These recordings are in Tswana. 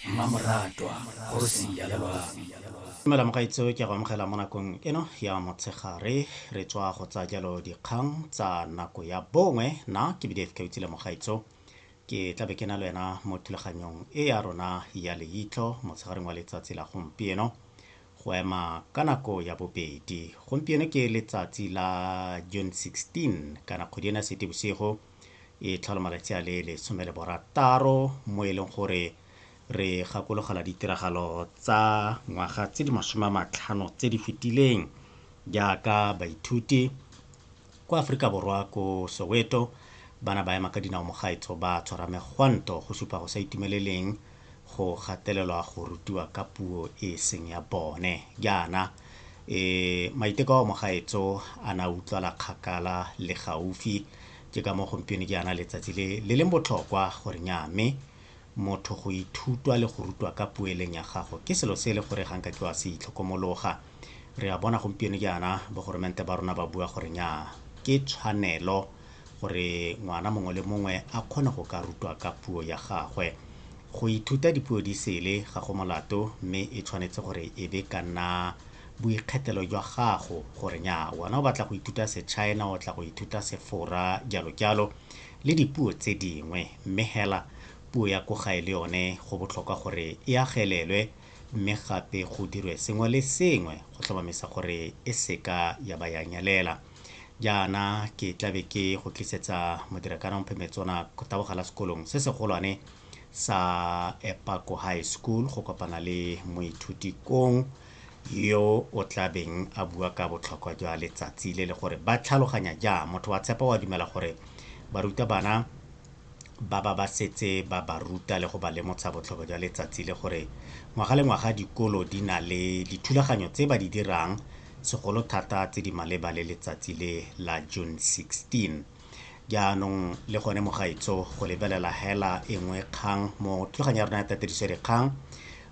mmamoratwa kgosi ya dumela mogaitseo ke go amogela mo nakong eno ya motshegare re tswa go tsa jalo dikgang tsa nako ya bongwe na ke bdf ka utsile mogaitso ke tlabe ke na le wena mo thulaganyong e ya rona ya leitlho motshegareng wa letsatsi la gompieno go ema ka nako ya bobedi gompieno ke letsatsi la june 16 kana kgwedi ena sete bosigo e tlhola malatsi a le lesome le borataro mo e leng gore re gakologela ditiragalo tsa ngwaga tse di masome a matlhano tse di fetileng jaaka baithuti kwa aforika borwa ko soweto bana ba ema ka dinao mogaetso ba tshwara megwanto go supa go sa itumeleleng go gatelelwa go rutiwa ka puo e seng ya bone jaana Ee, maiteko ao mogaetso a na utlwala kgakala le gaufi. Ke ka mo gompieno ke yana letsatsi le le leng botlhokwa gore nya mme motho go ithutwa le go rutwa ka puo e leng ya gago ke selo se e le gore ga nka ke wa se itlhokomologa. Re a bona gompieno ke yana bogoromente ba rona ba bua gore nya ke tshwanelo gore ngwana mongwe le mongwe a kgone go ka rutwa ka puo ya gagwe. Go ithuta dipuo di sele ga go molato mme e tshwanetse gore e be ka nna boikgethelo jwa gago gore nya wena o batla go ithuta Sechina, o tla go ithuta Sefora, jalo jalo le dipuo tse dingwe. Mme hela puo ya ko gae le yone go botlhokwa gore e agelelwe mme gape go dirwe sengwe le sengwe go tlhomamisa gore e seka ya ba ya nyelela. Jaana ke tla be ke go tlisetsa Modirakana Mphe Metsona go tabogela sekolong se segolwane sa Epako High School go kopana le moithuti kong yo o tlabeng a bua ka botlhokwa jwa letsatsi le le gore ba tlhaloganya jang motho wa tshepa wa dumela gore barutabana ba ba ba setse ba ba ruta le go ba lemotsha botlhokwa jwa letsatsi le gore ngwaga le ngwaga dikolo di na le dithulaganyo tse ba di dirang segolo thata tse di maleba le letsatsi le la June 16. Jaanong le gone mogaitso go lebelela hela e nngwe kgang mo thulaganyo ya rona ya tatediso dikgang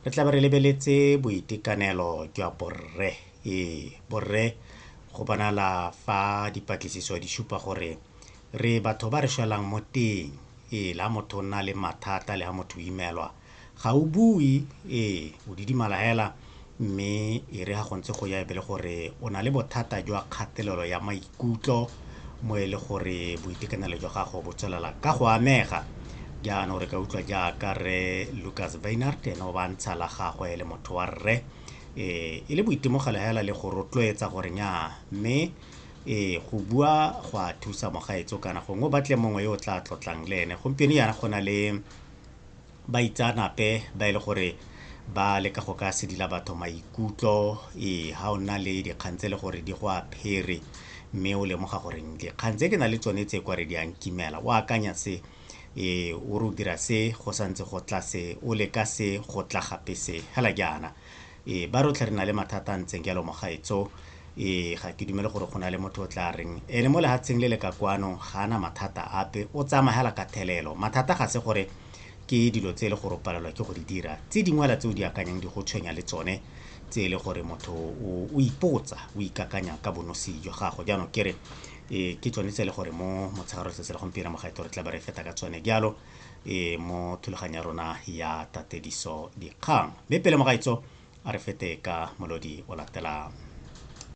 re tla be re lebeletse boitekanelo jwa borre ee borre go bonala fa dipatlisiso di supa gore Re batho ba re shwelang mo teng. Ee, le ha motho o nna le mathata, le ha motho o imelwa, ga o bue. Ee, o didimala hela. Mme e re ha go ntse go ya e be le gore o na le bothata jwa kgatelelo ya maikutlo mo e le gore boitekanelo jwa gago bo tswelela ka go amega. Jaanong re ka utlwa jaaka Rre Lucas Wynand ene o ba ntsha la gagwe e le motho wa rre, ee, e le boitemogelo hela le go rotloetsa gore nyaa mme Ee, go bua go a thusa mogaetso kana gongwe o batle mongwe yo o tla tlotlang le ene gompieno yana go na le baitsanape ba e le gore ba leka go ka sedila batho maikutlo ee ga o nna le dikgang tse e le gore di go a phere mme o lemoga gore dikgang tse ke na le tsone tse kwa re di ang kimela o akanya se ee o re o dira se go santse go tla se o leka se go tla gape se hela jaana Ee, ba rotlhe re na le mathata a ntseng jalo mogaetso. Ee, ga ke dumele gore go na le motho o tla reng ene mo lehatsheng le le ka kwano ga ana mathata ape, o tsamagela ka thelelo. Mathata ga se gore ke dilo tse e le gore o palelwa ke go di dira, tse dingwela tse o di akanyang di go tshwenya le tsone, tse e le gore motho o, o ipotsa, o ikakanya ka bonosi jwa gago. Jaanong ke re ee, ke tsone tse e le gore mo motshegare wa letsatsi la gompieno mogaetso re tla be re feta ka tsone jalo. e mo thulaganyo ya rona ya tatediso dikgang mme pele mogaitso a re fete ka molodi o latelang